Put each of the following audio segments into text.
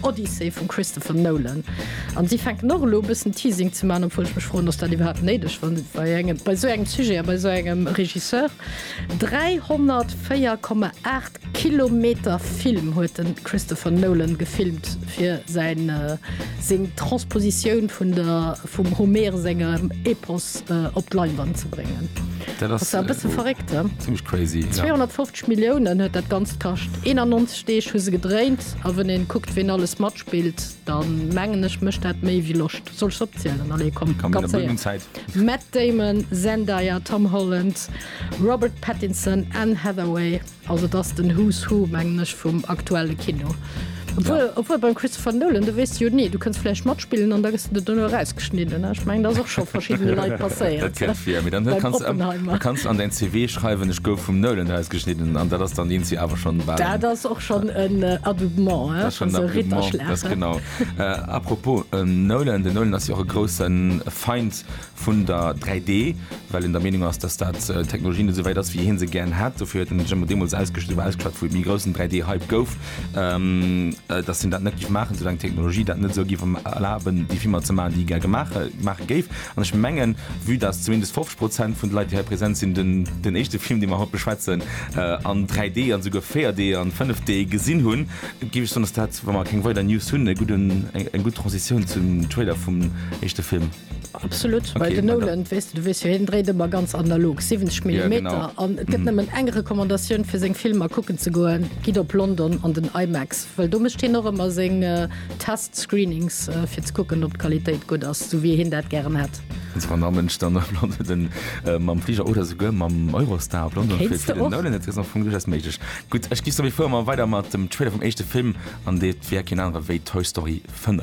Odyssey vum Christopher Nolan an si fänken och elo e bëssen Teasing ze man, obwuel ech mech froen, ass dat iwwerhaapt néideg wann bei engem bei esou engem Sujet a bei esou engem Regisseur? 304,8 Kilometer Film huet de Christopher Nolan gefilmt fir säin seng Transpositioun vun der vum Homer sengem Epos op d'Leinwand ze bréngen. Dat ass e bësse verréckt, he? Zimlech crazy, jo. 250 Milliounen huet dat Ganzt kascht, 91. D'Deeg hu se gedréint a wën een kuckt ween alles matspillt dann mengen ech mécht dat méi wéi Loscht. Soll ech se opzielen? Allez komm Komm, mir ganz hunn Zäit. Matt Damon, Zendaya, Tom Holland, Robert Pattinson, Anne Hathaway, also et ass den Who's Who mengen ech vum aktuelle Kino. Obwuel obwuel beim Christopher Nolan do weess de jo ni, du kënns vläicht matspillen an da gëss de der duerno erausgeschnidden. Ech mengen dat ass och scho verschiddene Leit passéiert. Dat kennt vir, mee dann huet beim kanns du am Oppenheimer. kanns du an däin CV schreiwen ech gouf vum Nolan erausgeschnidden an dat ass dann Lindsay Avalon. Dat ass och schon en Adoubement genau apropos Nolan den Nolan ass jo e groussen Feind vun der 3D, well en der Meinung ass, dass dat Technologie net souwäit ass wéi hien se gären hätt. Dofir huet en sech ëmmer deemools ausgeschwat, wou ausgeschwat wou e méi groussen 3D-Hype gouf, dass hien dat net géif maachen, soulaang d'Technologie dat net esou géif erlaben, déi Filmer ze maachen, déi hie gär gemaach gemaach géif. An ech mengen, vue dass zumindest 50 Prozent vun de Leit, déi hei present sinn, den, den éischte Film, dee mer haut beschwätzen, an 3D an esouguer 4D an 5D gesinn hunn, géif ech soen, dass dat, wa mer keng weider News hunn, e gudden, eng, eng gutt Transitioun zum Trailer vum éischte Film. Absolut, well den Nolan, weess de, du weess jo, hien dréit ëmmer ganz analog, 70 Millimeter, an et gëtt nëmmen eng Recommandatioun, fir seng Filmer kucken ze goen, Gitt op London an den IMAX, well do mécht hien och ëmmer seng Tests. Screenings fir ze kucken op d'Qualitéit gutt ass, esou wéi hien dat gären hätt. Also wann Ament ech dann op London mam Fliger oder esouguer mam Eurostar op London flitt fir den Nolan, dat ass am Fong duerchaus méiglech. Gutt, ech gi sou wéi vir, ma weider mat dem Trailer vum éischte Film an deet wär keen anere wéi Toy Story 5.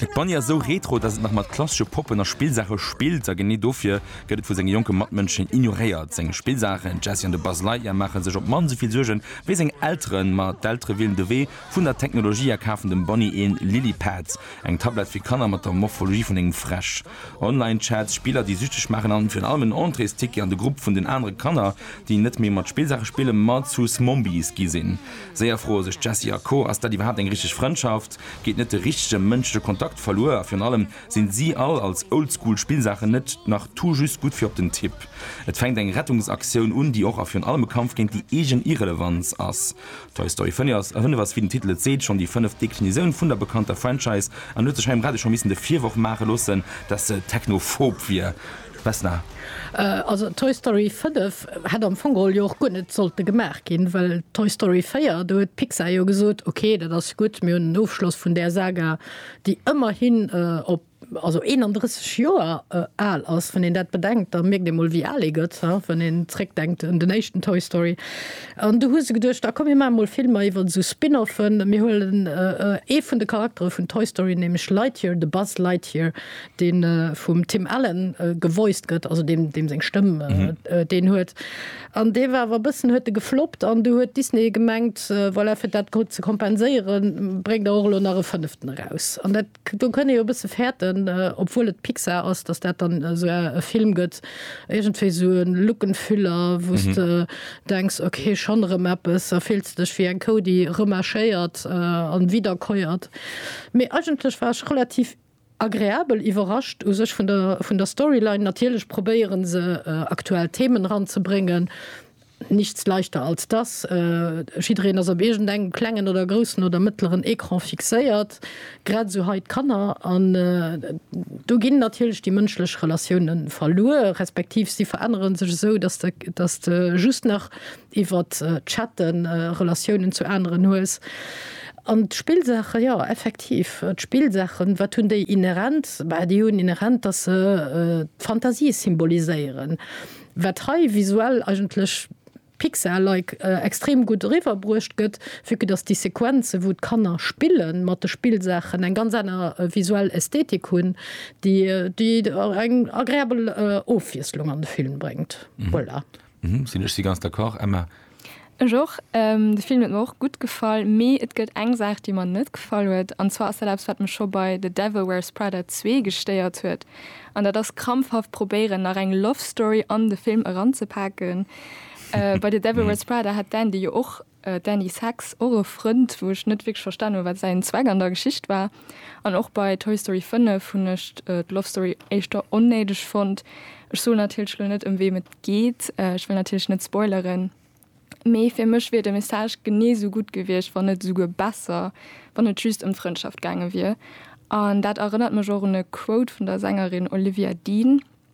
Et Bunny ass esou retro, dass et nach mat klassesche Poppen a Spillsaache spillt, a genee dofir gëtt et vu senge jonke Matmënschen ignoréiert. Seng Spillsaachen, den Jessie an de Buzz Lightyear, maache sech op d'mannst esou vill Suerge wéi seng Elteren. Ma d'Eltere wielen de Wee vun der Technologie a kafen dem Bunny een Lily-Pad, eng Tablett fir Kanner mat der Morphologie vun engem Fräsch. Online-Chats, Spiller déi süchteg maachen an virun allem en Entréesticket an de Grupp vun den anere Kanner déi net méi mat Spillsaache spillen, ma zu Smombies gi sinn. Séier froe sech d'Jessie a Co, Ass dat iwwerhaapt eng richteg Frëndschaft? Geet net de richtege mënschleche Kontakt verluer? A virun allem, sinn si all als Oldschool Spillsaachen net nach tout juste gutt fir op den Tipp? Et fänkt eng Rettungsaktioun un, déi och a virun allem e Kampf géint déi eegen Irrelevanz ass. Toy Story 5 ass, wéi den Titel et seet, schonn déi fënneft Deklisoun vun der bekannter Franchise an huet sech hei um Radio scho missen de Virworf maache loossen, dass se technophob wier. Vesna. Also Toy Story 5 hätt am Fong geholl jo och guer net sollte gemaach ginn, well Toy Story 4, do huet Pixar jo gesot, okay, dat ass gutt, mir hunn en Ofschloss vun där Saga, déi ëmmerhin op. also 31 Joer al ass, wann een dat bedenkt, da mierkt ee mol wéi al ee gëtt, wann een zréckdenkt un den éischten Toy Story. An du hu se geduecht, a komm mir maache mol Filmer iwwer esou Spin-Offen, mir huelen ee vun de Charaktere vun Toy Story, nämlech Lightyear, de Buzz Lightyear, dee vum Tim Allen gevoiced gëtt, also deem deem seng Stëmm deen huet, an dee war awer e bëssen, huet e gefloppt an du huet Disney gemengt, voilà, fir dat ze kompenséieren, bréngt der och elo nach e fënneften eraus. do kënn ee jo e bësse fäerten, obwuel et Pixar ass, datt dat dann esou e Film gëtt, iergendwéi sou e Look and Feel a wou s de denks, ok, schonn erëm eppes, a fills de dech wéi eng Kou, déi remarchéiert a widderkeuert. Mee eigentlech war ech relativ agreabel iwwerrascht u sech vun der Storyline. Natierlech probéiere se aktuell Themen eranzebréngen, Nichts leichter als das, jiddereen ass op iergend engem klengen oder groussen oder mëttleren Ecran fixéiert, grad esou hei d'Kanner. An do ginn natierlech déi mënschlech Relatioune verluer, respektiv si verännere sech esou, datt de just nach iwwert d'Chatte Relatiounen zu aneren hues. An d'Spillsaache, jo effektiv, d'Spillsaachen, wat hunn déi inhärent? Bah, déi hunn inhärent, datt se d'Fantasie symboliséieren. wat hei visuell eigentlech Pixar-like extrem gutt eriwwer bruecht gëtt, vue que dass déi Sequenzen, wou d'Kanner spille mat de Spillsaachen, eng ganz aner visuell Ästhetik hunn, déi eng agréabel Ofwiesslung an de Film bréngt. Voilà. Ech si ganz d'accord, Emma. Ech och. De Film huet mer och gutt gefall, mee et gëtt eng Saach déi mer net gefall huet, an zwar ass dat eppes wat mech scho bei The Devil Wears Prada 2 gestéiert huet, an dat ass krampfhaft probéieren nach eng Love Story an de Film eranzepaken. Bei The Devil Wears Prada hat d'Andy jo och, d'Andy Sachs, och e Frënd, wou ech net wierklech verstanen hu wat säin Zweck an der Geschicht war. An och bei Toy Story 5 hunn ech d'Lovestory éischter onnéideg fonnt. Ech soen natierlech elo net, ëm weem et geet, ech wëll natierlech net spoileren, mee fir mech wier de Message genee sou gutt gewiescht, wann net esouguer besser, wann et just ëm d'Frëndschaft gaange wier. An dat erënnert mech och un e Quote vun der Sängerin Olivia Dean.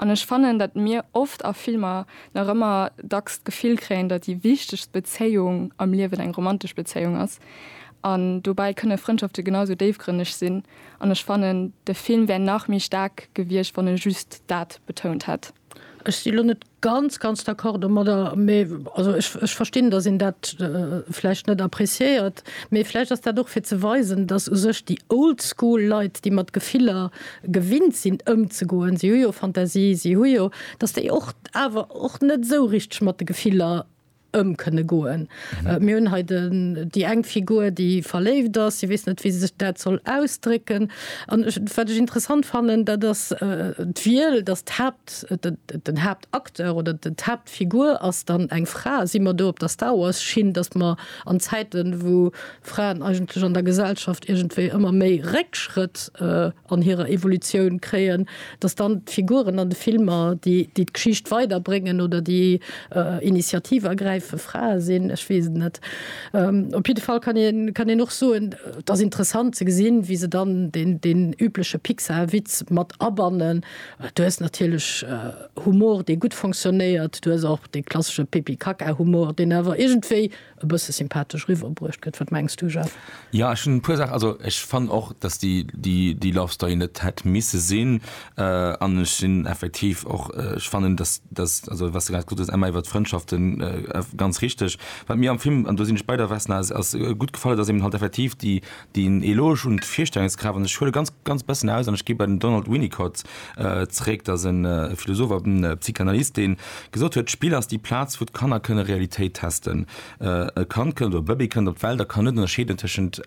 An ech fannen, datt mir oft a Filmer nach ëmmer dacks d'Gefill kréien, datt déi wichtegst Bezéiung am Liewen eng romantesch Bezéiung ass. An dobäi kënne Frëndschafte genau sou déifgrënneg sinn. An ech fannen, de Film wär nach méi staark gewiescht, wann e just dat betount hätt. Ech si lo net Ganz, ganz d'accord domadder. Mee also ech, ech verstinn, dass een dat vläicht net appréciéiert. Mee vläicht ass dat och fir ze weisen, dass u sech déi old school Leit, déi mat Gefiller gewinnt sinn ëmzegoen, si hu jo Fantasie, si hu jo, dass déi och awer och net esou richteg mat de Gefiller ëm kënne goen. Mir hunn hei den, déi eng Figur, déi verléift ass, si weess net, wéi se sech dat soll ausdrécken. An ech, wat ech interessant fannen, dat ass d'Wiel, dass d'Haapt, den Haaptacteur oder d'Haaptfigur ass dann eng Fra. Si mer do op der Star Wars-Schinn, dass mer an Zäiten, wou Fraen eigentlech an der Gesellschaft iergendwéi ëmmer méi Réckschrëtt, an hirer Evolutioun kréien, datt dann d'Figuren an de Filmer, déi d'Geschicht weiderbréngen oder déi Initiativ ergräife Frae sinn, ech weess et net. Op jidde Fall kann een kann een och soen, et ass interessant ze gesinn, wéi se dann deen übleche Pixar-Witz mat abannen. Du hues natierlech Humor, dee gutt fonctionnéiert, du hues och dee klassesche Pipi-Kaka-Humor, deen awer iergendwéi e bësse sympathesch riwwer bruecht gëtt. Wat mengs du, Jeff? Jo, ech hunn e puer Saachen, also ech fannen och, datt déi, déi, déi Love Story net hätt misse sinn an ech sinn effektiv och, ech fannen, datt, datt, also wat s de grad gesot hues, Emma, iwwert d'Frëndschaften, ganz richteg. Wat mir am Film, an do sinn ech bei der Vesna, ass gutt gefall huet, ass eben halt effektiv déi, Deen Eloge un d'Virstellungskraaft, an ech huele ganz, ganz bessen aus, an ech gi bei den Donald Winnicott zréck, dat ass e Philosoph a Psychanalyst, deen gesot huet, d'Spill ass déi Plaz, wou d'Kanner kënne Realitéit testen. E Kand kënnt, oder e Bëbee kënnt op d'Welt a kann net ënnerscheeden tëschent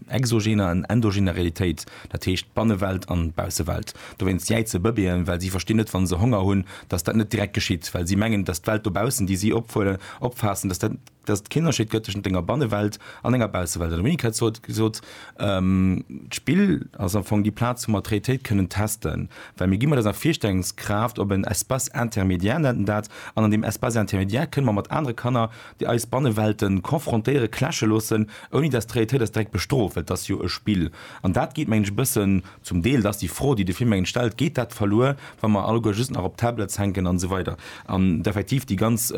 exogener an endogener Realitéit, dat heescht Bannewelt an Baussewelt. Dowéinst jäize Bëbeeën, well si verstinn net, wann se Honger hunn, dass dat net direkt geschitt, well si mengen, dass d'Welt dobaussen, déi si opfaassen, dass dat, dass et keen Ënnerscheed gëtt tëschent enger Bannewelt an enger Baussewelt. An de Monique huet sot gesot, d'Spill ass am Fong déi Plaz, wou mer d'Realitéit kënnen testen, well mir gi mat eiser Virstellungskraaft op en Espace intermédiaire, nennt en dat, an an deem Espace intermédiaire kënne mer mat anere Kanner, déi eis Banneweltë confrontéieren, clashe loossen, ouni dass d'Realitéit eis direkt bestrooft, well et ass jo e Spill. An dat geet, mengen ech, e bëssen, zum Deel, dat ass déi Fro, déi de Film, mengen ech, stellt, geet dat verluer, wa mer alleguer just nach op Tablets hänken an esou weider an effektiv déi ganz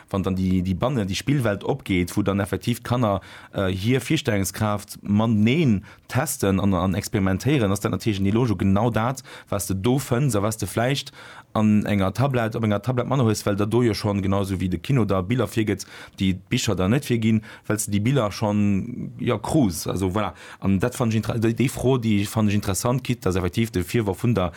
wann dann déi déi bannen déi Spillwelt opgeet, wou dann effektiv d'Kanner hir Virstellungskraaft mateneen testen an an experimentéieren, ass dat natierlech an Eloge u genau dat, wat s de do fënns a wat s de vläicht an enger Tablett, op enger Tablett manner hues, well der do jo schonn, genau esou wéi de Kino der Biller virgëtt, déi d'Bicher der net virginn, well s de déi Biller schonn, jo, krus. Also voilà, An dat fannen ech intere-, déi Fro, déi fannen ech interessant, quitte dass effektiv de Virworf vun der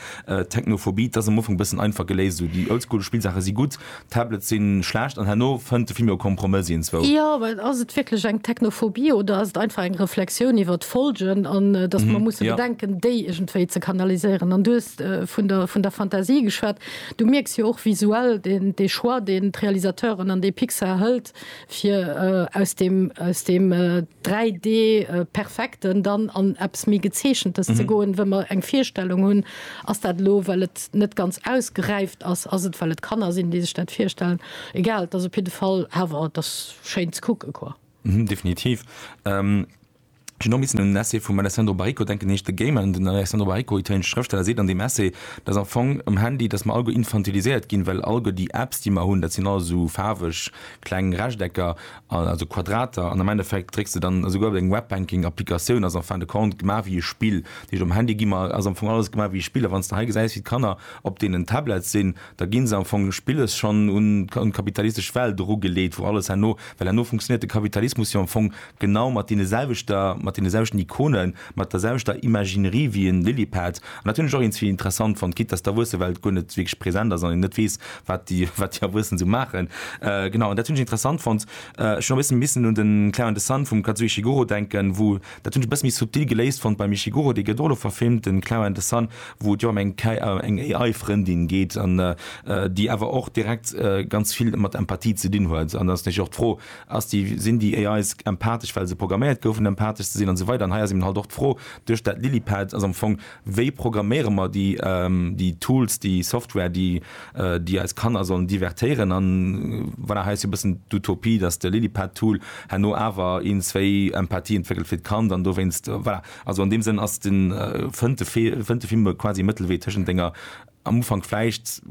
Technophobie, dat ass am Ufank e bëssen einfach geléist, esou déi oldschool Spillsaache si gutt, d'Tablets si schlecht an herno fënnt de Film jo e Kompromëss ientzwou. Jo, mä ass et wierklech eng Technophobie oder ass et einfach eng Reflexioun iwwer d'Folgen an dass mer musse bedenken, déi iergendwéi ze kanaliséieren? An du hues vun der, vun der Fantasie geschwat. Du mierks jo och visuell dee Choix, deen d'Realisateuren an dee Pixar hëlt, fir aus deem, aus deem 3D perfekten dann an eppes méi Gezeechentes ze goen, wou mer eng Virstellung hunn, ass dat elo, well et net ganz ausgeräift ass, ass et, well et Kanner sinn, déi sech dat virstellen, egal, et ass op jidde Fall awer, et ass schéin ze kucke quoi. Definitiv. Ech hunn och missen un en Essai vum Alessandro Baricco denken, en heescht The Gamer. Den Alessandro Baricco, italienesche Schrëftsteller, seet an deem Essai, datt am Fong um Handy, datt mer all guer infantiliséiert ginn, well all guer déi Apps, déi mer hunn, dat sinn alles esou faarweg kleng Rechtecker, also Quadrater, an am Endeffekt drécks de dann, esouguer op eng Webbanking-Applikatioun ass en fin de compte gemaach wéi e Spill. Dat heescht, um Handy gi mer, ass am Fong alles gemaach wéi e Spill. A wann s de hei gesäis, wéi d'Kanner op deenen Tablets sinn, da gi se am Fong spilles schonn un d'kapitalistesch Welt erugeleet, wou alles herno, well herno funktionéiert de Kapitalismus jo am Fong Genau mat deene selwechter, mat deene selwechten Ikonen, mat der selwechter Imaginerie wéi en Lilypad. An dat hunn ech och iergendzwéi interessant fonnt, quitte dass d'Erwuessenwelt guer net wierklech present ass an een net weess, wat déi, wat déi Erwuessen esou maachen. Genau, an dat hunn ech interessant fonnt. Ech hunn och e bësse missen un de Clair and the Sun vum Kazuo Ishiguro denken, wou, dat hunn ech e bësse méi subtil geléist fonnt beim Ishiguro. Dee gëtt och elo verfilmt, de Clair and the Sun, wou et jo ëm eng K, eng AI-Frëndin geet, an déi awer och direkt ganz vill mat Empathie ze dinn huet. An dann ass natierlech och d'Fro, Ass déi, sinn déi AIs empathesch, well se programméiert goufen empathesch ze sinn an esou weider? An hei ass eben halt och d'Fro duerch dat Lilypad, ass am Fong, wéi programméiere mer déi, déi Tools, déi Software, déi, déi eis Kanner sollen divertéieren? An voilà, hei ass jo e bëssen d'Utopie, datt de Lilypad-Tool herno awer een, zwéi Empathie entwéckelt fir d'Kand an dowéinst, voilà. Also an deem Sënn ass den, fënnt de, fënnt de Film quasi e Mëttelwee tëschent denger, Am Ufank vläicht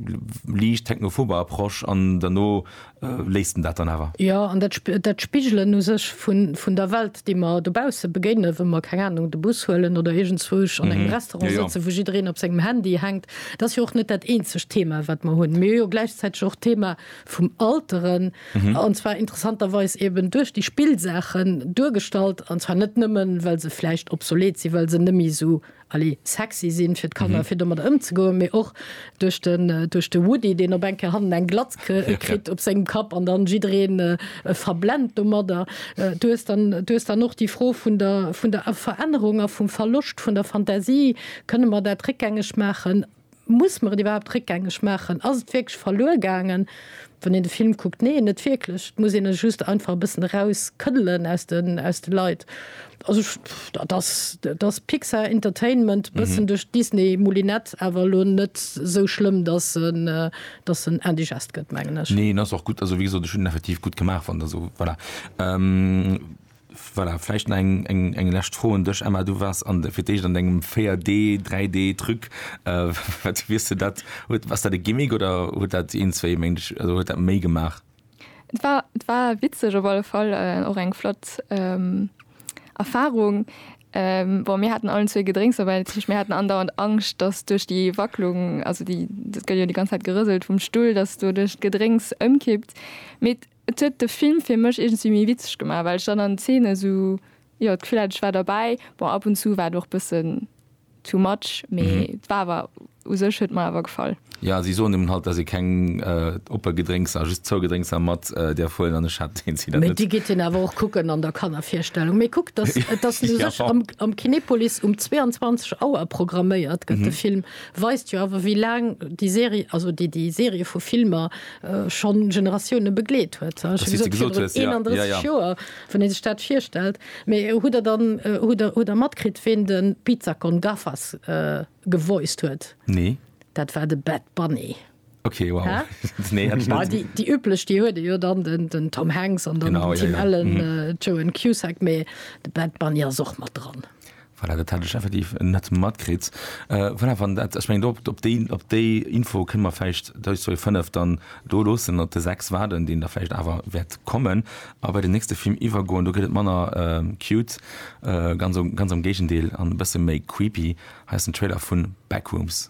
liicht technophober Approche an derno léisst en dat dann awer. Jo, an dat, dat Spigelen u sech vun, vun der Welt, déi mer dobausse begéinen, wa mer, keng Ahnung, de Bus huelen oder iergendzwousch an engem Restaurant sëtzen, wou jiddereen op sengem Handy hänkt, dat ass jo och net dat eenzegt Thema, wat mer hunn. Mee hu jo gläichzäiteg och d'Thema vum Alteren, an zwar interessanterweis eeben duerch déi Spillsaachen duergestallt, an zwar net nëmmen, well se vläicht obsolet sinn, well se net méi esou Allez, sexy sinn fir d'Kanner, fir domadder ëmzegoen, mee och duerch den, duerch de Woody, deen op eng Kéier hannen eng Glatz kritt op sengem Kapp an dann jiddereen e verblennt domadder. Du hues dann, du hues dann och déi Fro vun der, vun der Verännerung a vum Verloscht vun der Fantasie. Kënne mer dat réckgängeg maachen? Muss mer et iwwerhaapt réckgängeg maachen? Ass et wierklech verluer gaangen, wann een de Film kuckt? Neen, net wierklech. Et muss een e just einfach e bëssen eraus këddelen aus de Leit. Also dat ass, dat ass Pixar Entertainment, e bëssen duerch d'Disney Moulinette, awer elo net esou schlëmm, datt en, datt en indigest gëtt, mengen ech. Nee, en ass och gutt, also wéi gesot, ech hunn en effektiv gutt gemaach, wann der esou, voilà. Voilà, vläicht nach eng lescht Fro un dech, Emma. Du waars fir d'éischt an dengem 4D, 3D Truc. Wat wiers du dat? Ass dat e Gimmick oder huet dat een, zwéi Méint, also huet dat méi gemaach? Et war, et war witzeg op alle Fall, och eng flott Erfarung. Bon, mir haten allen zwee Gedrénks dobäi, dat heescht mir haten andauernd Angscht, datt duerch déi Wacklung, also déi, et gëtt jo déi ganz Zäit gerëselt vum Stull, datt doduerch d'Gedrénks ëmkippt. Mee Et huet de Film fir mech iergendwéi méi witzeg gemaach, well ech dann an Zeenen esou, jo, d'Gefill hat, ech war derbäi. Bon, ab und zu war et och bëssen too much, mee et war awer, u sech huet et mer awer gefall. Jo, si soen eben halt, dass ee keng oppe Gedrénkser, just zou Gedrénkser mat däerf huelen, an ech hat deen Zider Mee net. déi geet een awer och kucken an der Kannervirstellung. Mee kuckt, dass, et ass u sech am, am Kinepolis um 22 Auer programméiert gëtt de Film, weist jo awer wéi laang déi Serie, also déi, déi Serie vu Filmer schonn Generatioune begleet huet. Ech hu gesot, virun 31 Joer, wann ee sech dat virstellt. Mee hutt Der dann, hutt Der, hutt Der matkritt, ween de Pizza con Gafas gevoiced huet? Nee. Dat war de Bad Bunny. Ok, wow. Hä? Nee, hätt ech net. Déi, déi üblech, déi huet ee jo dann, den, den Tom Hanks an dann den Tim Allen, Joan Cusack, mee de Bad Bunny ass och mat dran. Voilà, dat hat ech effektiv net matkritt. Voilà, wann dat, ech mengen, do op, op déi, op déi Info kënne mer vläicht dës Joer 5 dann do loossen an op de 6 waarden, deen da vläicht awer wäert kommen a bei den nächste Film iwwergoen. Do gëtt et manner cute, ganz, ganz am Géigendeel, an e bësse méi creepy. Hei ass den Trailer vu Backrooms.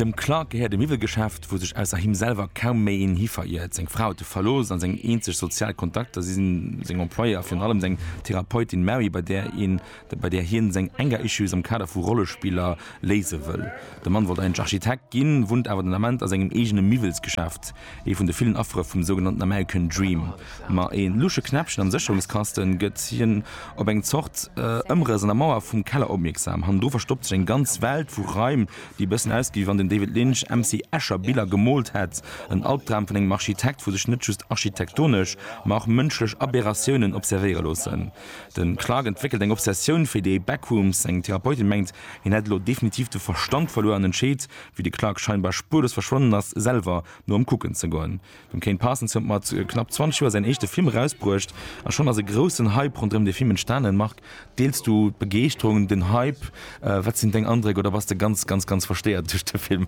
Dem Clark gehéiert e Miwwelgeschäft, wou sech ausser him selwer kaum méi een hi veriert. Seng Fra huet e verlooss a seng eenzeg sozial Kontakter si seng Employéeë a virun allem seng Therapeutin Mary, bei där een bei där hien seng Anger-Issues am Kader vu Rollespiller léise wëll. De Mann wollt eigentlech Architekt ginn, wunnt awer den Ament a sengem eegene Miwwelsgeschäft, ee vun de villen Affere vum sougenannten American Dream. Ma ee lusche Knäppchen am Sécherungskaste gëtt hien op eng Zort Ëmrëss an der Mauer vum Keller opmierksam. Hannendru verstoppt sech eng ganz Welt vu Raim, déi e bëssen ausgeet, wéi wann den David Lynch MC Escher Biller gemoolt hätt. En Albdram vun engem Architekt, wou sech net just architektonesch, ma och mënschlech Aberratiounen observéiere loossen. De Clark entwéckelt eng Obsessioun fir déi Backrooms. Seng Therapeutin mengt, hien hätt elo definitiv de Verstand verluer an entscheet, wéi de Clark scheinbar spuerlos verschwonnen ass, selwer no em kucken ze goen. Dem Kane Parsons huet mat knapp 20 Joer säin éischte Film erausbruecht a schonn ass e groussen Hype ronderëm dee Film entstanen. Marc, deels du d'Begeeschterung, den Hype? Wat sinn deng Andréck? Oder bass de ganz, ganz, ganz verstéiert duerch de Film?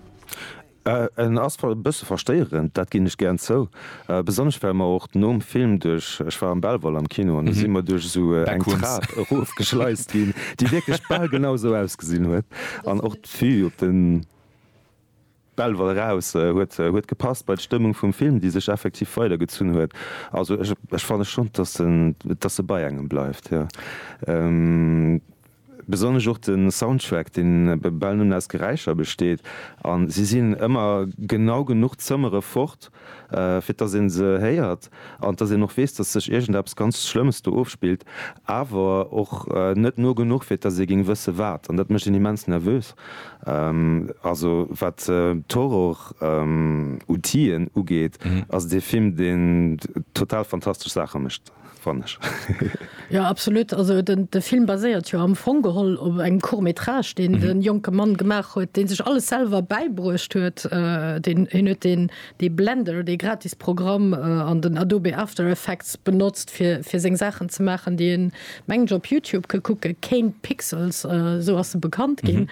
En ass e bësse verstéierend, dat ginn ech gären zou, besonnesch well mer och nom Film duerch, ech war am Belval am Kino, an do si mer duerch esou eng Trap erofgeschleist ginn, déi wierklech bal genau esou ausgesinn huet. An och d'Vue op de Belval eraus huet gepasst bei d'Stëmmung vum Film, déi sech effektiv weidergezunn huet. Also ech fanne schonn, datt se bei engem bleift, jo. Besonnesch och de Soundtrack, dee bal nëmmen aus Geräischer besteet, a si sinn ëmmer genau genuch Zëmmere fort, fir dass ee se héiert an dass een och weess, dass sech iergendeppes ganz Schlëmmes do ofspillt, awer och net no genuch, fir dass ee géing wësse wat. An dat mécht een immens nervös. Also wat d'Horror-Outien ugeet, ass et ee Film, deen total fantastesch Saache mécht. fann ech. Jo, absolut. Also de Film baséiert jo am Fong geholl op engem Court métrage, deen e jonke Mann gemaach huet, dee sech alles selwer bäibruecht huet. Deen hien huet deen dee Blender, dee gratis Programm an den Adobe After Effects benotzt fir fir seng Saachen ze maachen, déi een mengen ech op Youtube ka kucken, Kane Pixels, esou ass e bekannt ginn.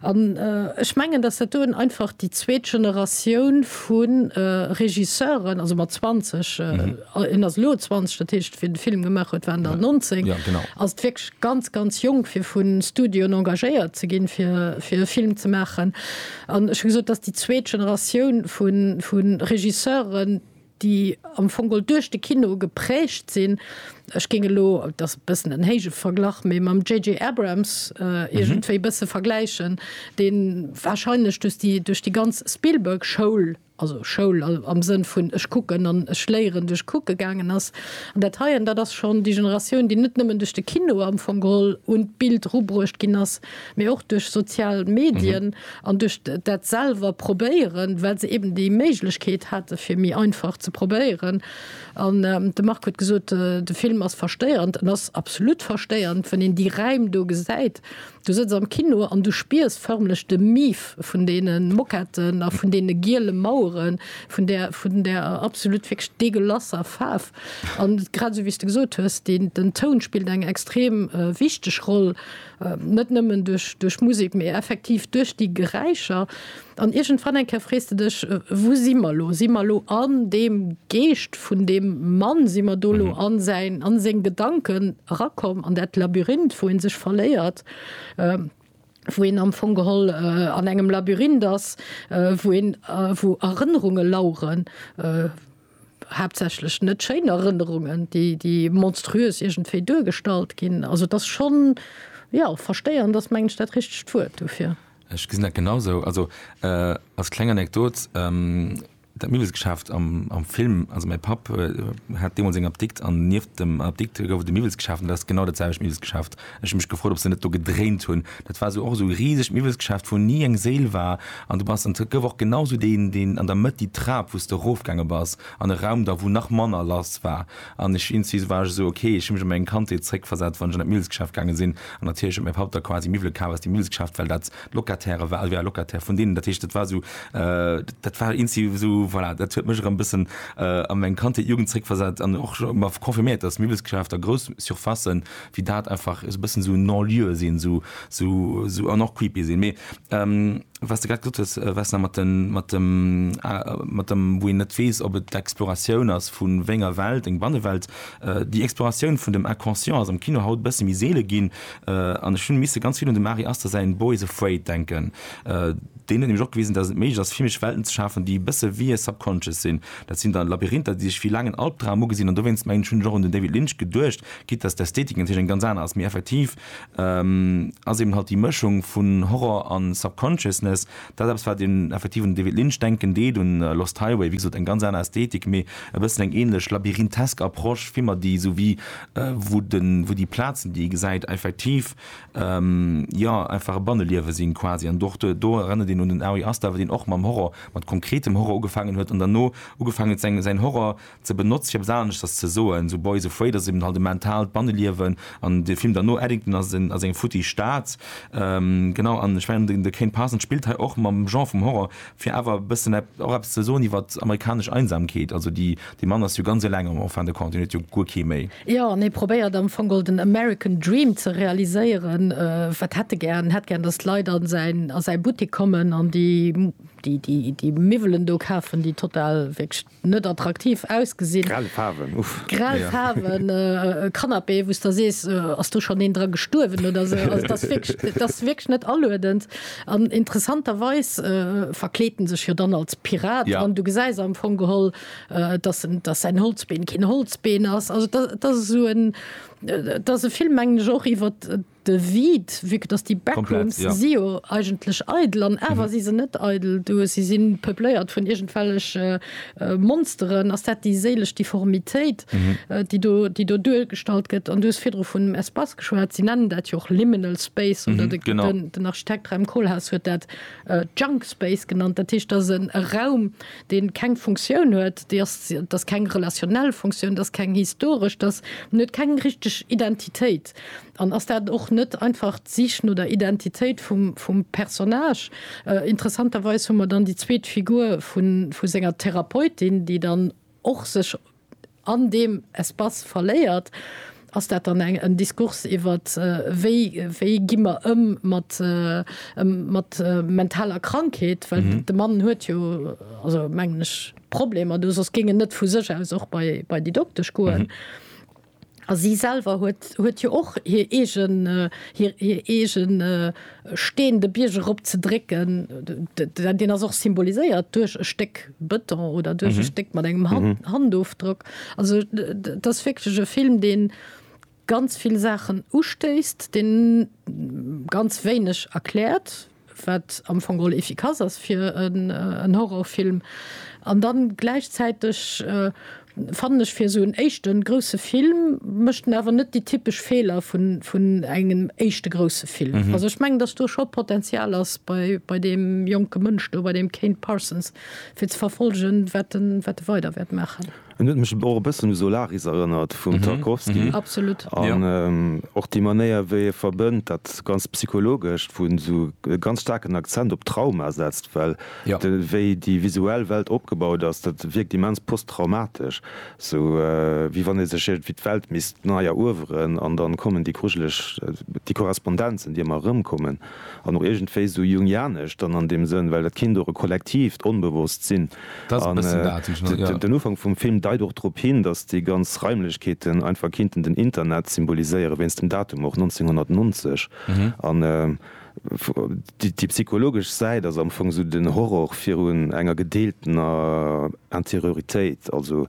An ech mengen, datt dat do en einfach déi zweet Generatioun vu Regisseuren, also mat 20, En ass elo 20, dat heescht wéi de Film gemaach huet, war en dann 19. Ass et wierklech ganz, ganz jonk fir vu Studioen engagéiert ze ginn, fir fir e Film ze maachen. An ech hu gesot, dass déi zweet Generatioun vu vu Regisseuren, déi am Fong geholl duerch de Kino geprägt sinn, ech géing elo, et ass e bëssen en héije Verglach, mee mam JJ. Abrams iergendwéi e bësse vergläichen, dee warscheinlech duerch déi duerch déi ganz Spielberg-Schoul, also Schoul am Sënn vun ech kucken an ech léieren duerch kucke gaangen ass. An dat heien, dat ass schonn déi Generatioun, déi net nëmmen duerch de Kino am Fong geholl un d'Bild rubruecht ginn ass, mee och duerch sozial Medien an duerch dat selwer probéieren, well se eben déi Méiglechkeet hate fir méi einfach ze probéieren. An de Marc huet gesot, de Film ass verstéierend. En ass absolut verstéierend, wann een déi Räim do gesäit, Du sëtz am Kino an du spiers förmlech de Mief vun deene Moquetten a vun deene giele Maueren, vun där, vun där absolut wierklech degueulasser Faarf. An grad esou, wéi s de gesot hues, deen, den Toun spillt eng extrem wichteg Roll, net nëmmen duerch, duerch d'Musek, mee effektiv duerch déi Geräischer. An iergendwann eng Kéier frees de dech, Wou si mer elo? Si mer elo an deem Geescht vun deem Mann? Si mer do elo an säin, an seng Gedanken erakomm, an dat Labyrinth, wou ee sech verléiert, wou een am Fong geholl an engem Labyrinth ass, wou een, wou Erënnerunge laueren, haaptsächlech net schéin Erënnerungen, déi, déi monstruös iergendwéi duergestallt ginn. Also et ass schonn, jo, versteieren ass, mengen ech, dat richtegt Wuert dofir. Ech gesinn dat genau esou. Also als kleng Anekdot, Dat Miwwelsgeschäft am am Film, also mäi Papp hat deemools eng Apdikt an nieft dem Apdikt gouf et e Miwwelsgeschäft an dat ass genau dat selwecht Miwwelsgeschäft. Ech hu mech gefrot, ob se net do gedréint hunn. Dat war esou och esou e risegt Miwwelsgeschäft, wou ni eng Séil war an du bass an et gouf och genau esou deen deen an der Mëtt déi Trap, wou s de erofgaange bass an e Raum da wou nach manner lass war. An ech insti war ech esou, ok, ech hu mech an meng Kandheet zréckversat, wann ech an dat Millsgeschäft gaange sinn, an natierlech huet mäi Papp da quasi Miwwele kaf aus dem Millsgeschäft, well dat d'Locataire war, ëlwéi all Locataire vun deenen. Dat heescht, dat war esou, dat war insti esou, voilà, dat huet mech erëm bëssen a meng Kandheet, Jugend zréckversat an och mer confirméiert, dass Miwwelsgeschäfter, grouss Surfacen wéi dat einfach esou bëssen esou non-lieu sinn, esou, esou, esou an och creepy sinn. Mee. Wat s de grad gesot hues, Vesna, mat den, mat dem, mat dem, wou een net weess, ob et d'Exploratioun ass vu wéi enger Welt, eng Bannewelt. Déi Exploratioun vun dem Inconscient ass am Kino haut e bësse méi seele ginn. An ech hu misse ganz vill un dem Ari Aster säin Boys Afraid denken. Deen huet nämlech och gewisen, dass et méiglech ass, filmesch Welten ze schafen, déi e bësse wéi subconscious sinn. Dat sinn dann Labyrinther, déi sech wéi laangen Albdram ugesinn. An dowéinst, mengen ech, hunn ech och un den David Lynch geduecht, quitte dass d'Ästhetik natierlech eng ganz aner ass. Mee effektiv, ass eben halt déi Mëschung vun Horror a Subconsciousness, dat eppes wat een effektiv un de David Lynch denken deet, un Lost Highway, wéi gesot eng ganz aner Ästhetik, mee e bëssen eng ähnlech labyrinthesk Approche, Filmer déi esou wéi wou de wou déi Plazen déi ee gesäit effektiv jo einfach e Banneliewe sinn quasi an och do do erënnert een un den Ari Aster, deen och mam Horror, mat konkretem Horror ugefaangen huet an dann no ugefaangen huet säin säin Horror, ze benotz fir eppes aneschters ze soen, sou Boys Afraid ass eben halt e mentaalt Banneliewen an de Film derno Eddington ass en ass eng futti Stad genau an ech mengen de Kane Parsons spillt hei och mam Genre vum Horror fir awer e bëssen och eppes ze soen iwwert amerikanesch Einsamkeet, also déi dee Mann ass jo ganz eleng am en fin de compte, hien huet jo guer kee méi. Jo an hie probéiert am Fong den American Dream ze realiséieren, wat hätt e gären, en hätt gären dass d'Leit a säin a säi Buttik kommen an déi déi déi déi Miwwelen do kafen déi total wierklech net attraktiv ausgesinn. Grell Faarwen, uff. Grell Faarwen, e Canapé wou s de sees, ass do schonn een dra gestuerwen oder sou. Also et ass wierklech, et ass wierklech net aluedend. An interessanterweis verkleet en sech jo dann als Pirat an du gesäis am Fong geholl, dass en, dass säin Holzbeen keen Holzbeen ass. Also et ass esou en, et ass e Film mengen ech och iwwert De Vide, vu que dass déi Backrooms, si jo eigentlech eidel an awer si se net eidel, do si si peupléiert vun iergendwellege Monsteren, ass dat déi séilesch Difformitéit, déi do, déi do duergestallt gëtt? An du hues virdru vun Espace geschwat, si nennen dat jo och Liminal Space oder den Architekt Rem Koolhaas huet dat Junk Space genannt, dat heescht, dat ass e Raum, dee keng Funktioun huet, dee ass, dat ass keng relationnel Funktioun, dat ass keng historesch, dat ass, en huet keng richteg Identitéit. Text? An ass dat och net einfach d'Sich no der Identitéit vum Personnage? Interessanterweis hu mer dann déi zweet Figur vu senger Therapeutin, déi dann och sech an deem Espace verléiert. Ass dat dann en Diskurs iwwer wéi gi mer ëm mat mentaler Krankheet? Well de Mann huet jo, also mengen ech, Problemer do, soss géing en net vu sech aus och bei déi Doktesch goen. A si selwer huet, huet jo och hir eegen, hir eegen Steen de Bierg erop ze drécken. Deen ass och symboliséiert duerch e Stéck Bëton oder duerch e Stéck mat engem Handofdrock. Also et ass wierklech e Film, dee ganz vill Saachen ustéisst, dee ganz wéineg erkläert. wat am Fong geholl efficace ass fir en Horrorfilm, an da gläichzäiteg fannen ech fir esou en éischte grousse Film mécht en awer net déi typesch Feeler vun engem éischte grousse Film. Also ech mengen, datt do scho Potenzial ass bei deem jonke Mënsch do, bei deem Kane Parsons, fir ze verfollegen, wat e weider wäert maachen. En huet mech och e bëssen u Solaris erënnert vum Tarkovsky. Absolut. An och déi Manéier, wéi e verbënnt, dat ganz Psychologescht, wou en esou e ganz staarken Akzent op Trauma setzt, well de wéi déi visuell Welt opgebaut ass, dat wierkt immens posttraumatesch, sou wéi wann ee sech iergendwéi d'Welt misst nei erueweren. An dann kommen déi grujeleg, déi Korrespondenzen, déi ëmmer erëmkommen, an och iergendwéi esou jungianesch dann an deem Sënn, well dat Kind och e kollektiivt Onbewosst sinn. Den Ufank vum Film deit och drop hin, datt déi ganz Raimlechkeeten einfach kinnten den Internet symboliséieren, wéinst dem Datum och, 1990. An déi psychologesch Säit ass am Fong esou den Horror virun enger gedeeltener Interioritéit, also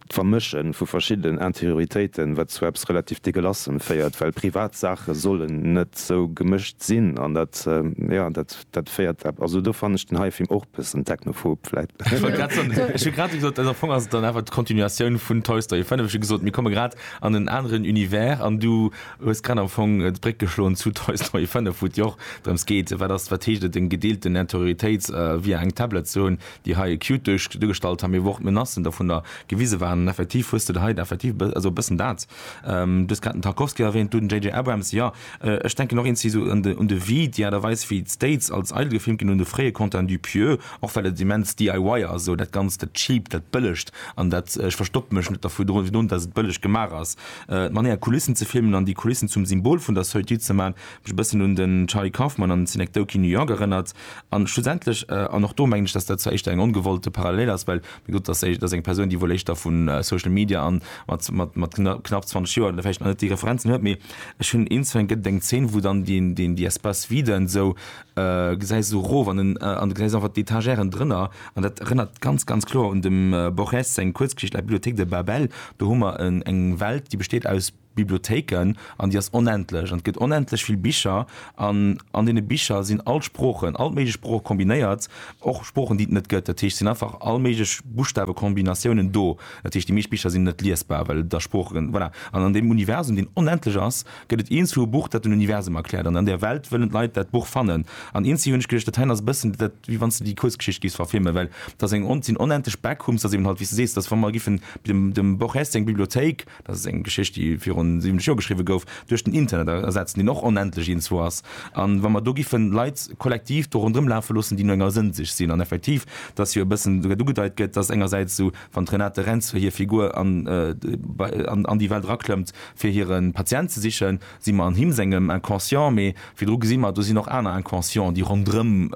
D'Vermësche vu verschiddenen Anterioritéiten, wat zu eppes relativ Degelassem féiert, well privat Saache sollen net esou gemëscht sinn an dat, jo, dat féiert, also do fannen ech den hire Film och bëssen technophob vläit. Ech wollt grad soen, ech hu grad gesot, am Fong ass et dann awer d'Kontinuatioun vun Toy Story 5, ech hu gesot, mir komme grad an en aneren Univers an du hues grad am Fong d'Bréck geschloen zu Toy Story 5, wou et jo och drëms geet, wat ass, wat heescht et, eng gedeelten Anterioritéit via eng Tablett ze hunn, déi hei acute duerch duergestallt hu mir, wou och d'Menacen dovunner gewise waren. An effektiv hues de der hei effektiv e bës also e bëssen dat. Du hues grad den Tarkovsky erwähnt, du den JJ. Abrams. Jo, ech denken och eens wéi esou un de un de Vide, déi Aart a Weis wéi d'States als Idol gefilmt ginn hunn, de fréie Quentin Dupieux, och well et immens DIY ass, esou dat Ganzt, dat Cheapt, dat Bëllegt an dat ech verstoppe mech net dervu dru drun, dass et bëlleg gemaach ass. D'Manière Kulissen ze filmen an déi Kulissen zum Symbol vun der Solitude ze maachen, huet mech e bëssen un den Charlie Kaufman an Synecdoche New York erënnert. An schlussendlech, an och do mengen ech, dass dat zwar éischter eng ongewollte Parallel ass, well mir gesot, dass dat eng Persoun, déi wuel éischter vu Social Media an mat knapp 20 Joer vläicht nach net déi Referenzen huet, mee ech hunn eens, et gëtt eng Zeen, wou dann déi Espaces viden esou gesäis, esou erof an den, an du gesäis einfach d'Etagèren drënner. An dat erënnert ganz, ganz kloer un dem Borges seng Kuerzgeschicht La bibliothèque de Babel. Do hu mer eng Welt, déi besteet aus Bibliothéiken an déi ass onendlech an et gëtt onendlech vill Bicher an an deene Bicher sinn all d'Sproochen, all d'méiglech Sprooche kombinéiert, och Sproochen déi et net gëtt. Dat heescht, et sinn einfach all méiglech Buschtawekombinatiounen do. Dat heescht, déi meescht Bicher sinn net liesbar, well et a Sproochen, voilà. An an deem Universum, deen onendlech ass, gëtt et eenzellu e Buch, dat den Universum erkläert an an där Welt wëllen d'Leit dat Buch fannen. An eenzellu hunn ech geduecht, dat heien ass e bëssen dat, wéi wann s de déi Kuerzgeschicht géifs verfilmen, well et ass eng, et sinn onendlech Backrooms, et ass eben halt, wéi s de sees, et ass, wa mer giffen dem dem Borges seng Bibliothéik, Dat ass eng Geschicht, déi virun 70 Joer geschriwwe gouf, duerch den Internet ersetzt, deen och onendlech iergendzwou ass. An wa mer do giffen Leit kollektiv do ronderëm lafe loossen, déi no enger Sënn sich sinn, an effektiv, dass jo e bëssen dat ugedeit gëtt, dass engersäits esou wann d'Renate Rentzel hir Figur an déi Welt eraklëmmt, fir hire Patient ze sichen, si mer an him sengem Inconscient, mee virdru gesi mer, do sinn och aner Inconscienten, déi ronderëm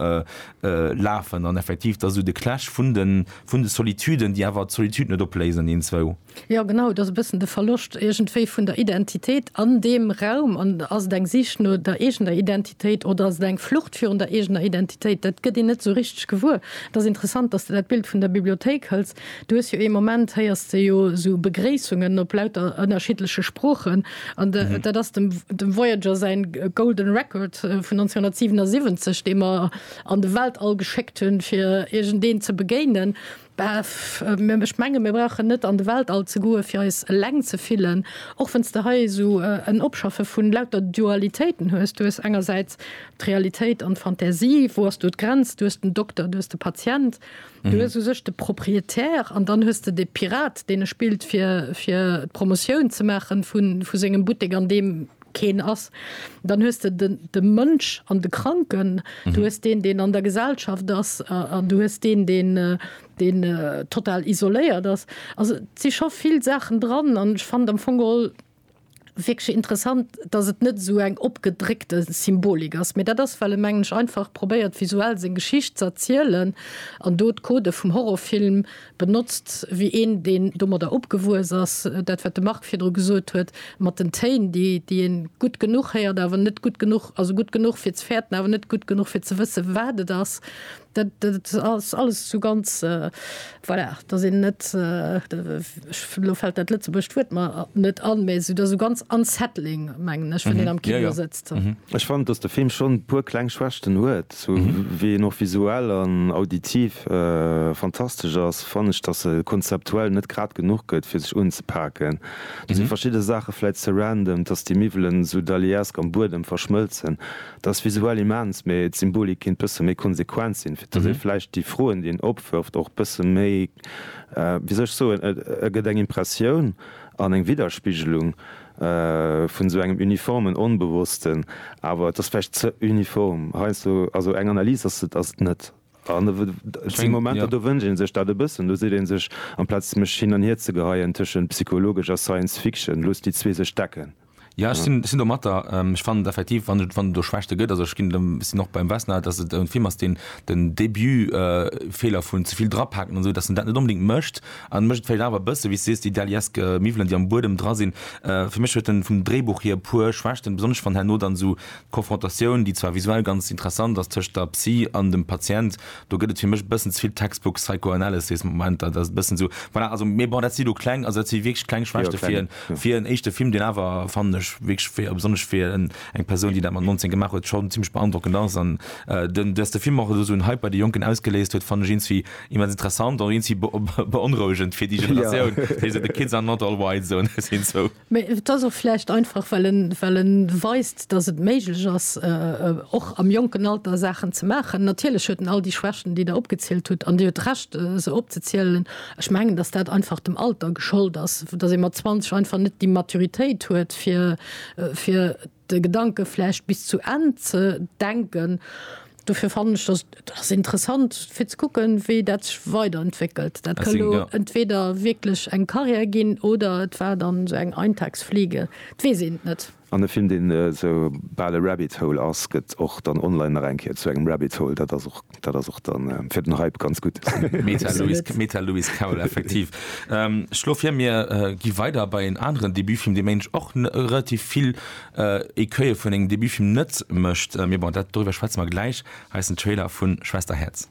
lafen, an effektiv, dass esou de Clash vun de Solituden, déi awer d'Solitude net opléisen, eenzwou. Jo genau, et ass e bëssen de Verloscht iergendwéi vun der Identitéit an deem Raum. An ass et eng Sich no der eegener Identitéit oder ass et eng Flucht virun der eegener Identitéit? Dat gëtt een net esou richteg gewuer. Et ass interessant, datt s de dat Bild vun der Bibliothéik hëls. Du hues jo ee Moment, héiers de jo esou Begréissungen op lauter ënnerschiddleche Sproochen. An dat ass dem dem Voyager säin Golden Record vun 1977, dee mer an de Weltall geschéckt hunn, fir iergendeen ze begéinen. Ech menge mir brauchen net an de Weltall ze goe fir eis eleng ze fillen, och wann s de hei esou en Opschaffe vun lauter Dualitéiten hues. Du hues engersäits d'Realitéit an d'Fantasie. Wou ass do d'Grenz? Du hues den Dokter, du hues de Patient, du hues u sech de Propriétaire an dann hues de de Pirat, deen e spillt fir d'Promotioun ze maache vu sengem Buttek an deem keen ass, dann hues de de de Mënsch an de Kranken, du hues deen, deen an der Gesellschaft ass, an du hues deen, deen deen total isoléiert ass. Also et si scho vill Saachen dran an ech fand am Fong geholl wierklech interessant, datt et net esou eng opgedréckte Symbolik ass, mee dat ass, well e mengen ech einfach probéiert visuell seng Geschicht ze erzielen an do d'Codë vum Horrorfilm benotzt wéi een deen domadder opgewuess ass, dat wat de Marc virdru gesot huet mat den Téin déi déi een gutt genuch héiert awer net gutt genuch, also gutt genuch fir ze fäerten awer net gutt genuch fir ze wësse wat et ass, dat dat ass alles esou ganz voilà dass een net elo fält dat lëtzebuergescht Wuert mer net an, mä esou dass esou ganz unsettling mengen ech wann een am Kino sëtzt. Ech fannen dass de Film schonn e puer kleng Schwächten huet. Sou wéi en och visuell an auditiv fantastesch ass, fannen ech dass e konzeptuell net grad genuch gëtt fir sech unzepaken. Do si verschidde Saache vläit ze random, dass déi Miwwelen sou daliesk am Buedem verschmëlzen, dat ass visuell immens, mee d'Symbolik kinnt bësse méi konsequent sinn, fir dass ee vläicht déi Froen déi en opwërft och bësse méi, wéi soll ech soen, e gëtt eng Impressioun an eng Widderspigelung. vun esou engem uniformen Onbewossten, awer et ass vläicht ze uniform heiansdo, also eng Analys ass et ass et net. An et si Momenter, do wënscht ee sech dat e bëssen, do seet ee sech, amplaz mech hin an hier ze geheien tëschent psychologesch a Science Fiction, loosst déi zwee sech decken. Jo, ech sinn sinn domatter. Ech fannen et effektiv, wann et wann et do Schwächte gëtt, also ech ginn dem sinn och beim Westner, datt et e Film ass, deen den Début Feeler vun ze vill drapaken an esou, datt en dat net onbedéngt mécht, An mécht vläit awer e bësse wéi s sees, déi daliesk Miwwelen déi am Buedem dra sinn. Fir mech huet en vum Dréibuch hier e puer Schwächten, besonnesch wann herno dann esou d'Confrontatioun, déi zwar visuell ganz interessant ass, tëscht der Psy an dem Patient, do gëtt et fir mech e bëssen ze vill Textbook Psychoanalysis Momenter, dat ass e bëssen esou, voilà, also mee bon dat si lo kleng, also dat si wierklech kleng Schwächte fir en, fir en éischte Film, deen awer fannen ech wierklech fir, besonnesch fir en, eng Persoun déi dat mat 19 gemaach huet, schonn zimlech beandrockend ass. An den, dass de Film och elo esou en Hype bei de Jonken ausgeléist huet, fannen ech ins wie, Immens interessant an eenzi beonrouegend fir déi Generatioun, déi esou the kids are not all white soen, ech sinn sou. Mee et ass och vläicht einfach, well en, well en weist, datt et méiglech ass, och am jonken Alter Saachen ze maachen. Natierlech huet en all déi Schwächten, déi Der opgezielt hutt, an Dir hutt Recht, se opzezielen. Ech mengen, datt dat einfach dem Alter geschollt ass, datt ee mat 20 einfach net déi Maturitéit huet, fir, fir de Gedanke vläicht bis zu Enn ze denken. Dofir fannen ech dass et ass interessant fir ze kucken, wéi dat sech weiderentwéckelt. Dat ka lo entweder wierklech eng Carrière ginn oder et war dann esou eng Eintagsfliege, et weess een et net. An e Film, deen esou bal e Rabbit Hole ass, gëtt och dann online nach eng Kéier zu engem Rabbit Hole. Dat ass och Dat ass och dann fir den Hype ganz gutt. Meta Lewis, Meta Lewis Carroll, effektiv. Ähm, ech schlo vir, mir äh, gi weider bei en aneren Debutfilm, dee mensch och n- relativ vill äh, Écueille vun engem Debutfilm net mécht. Äh, mee bon, dat, dorüwer schwätze mer gläich. Hei ass den Trailer vun Schwesterherz.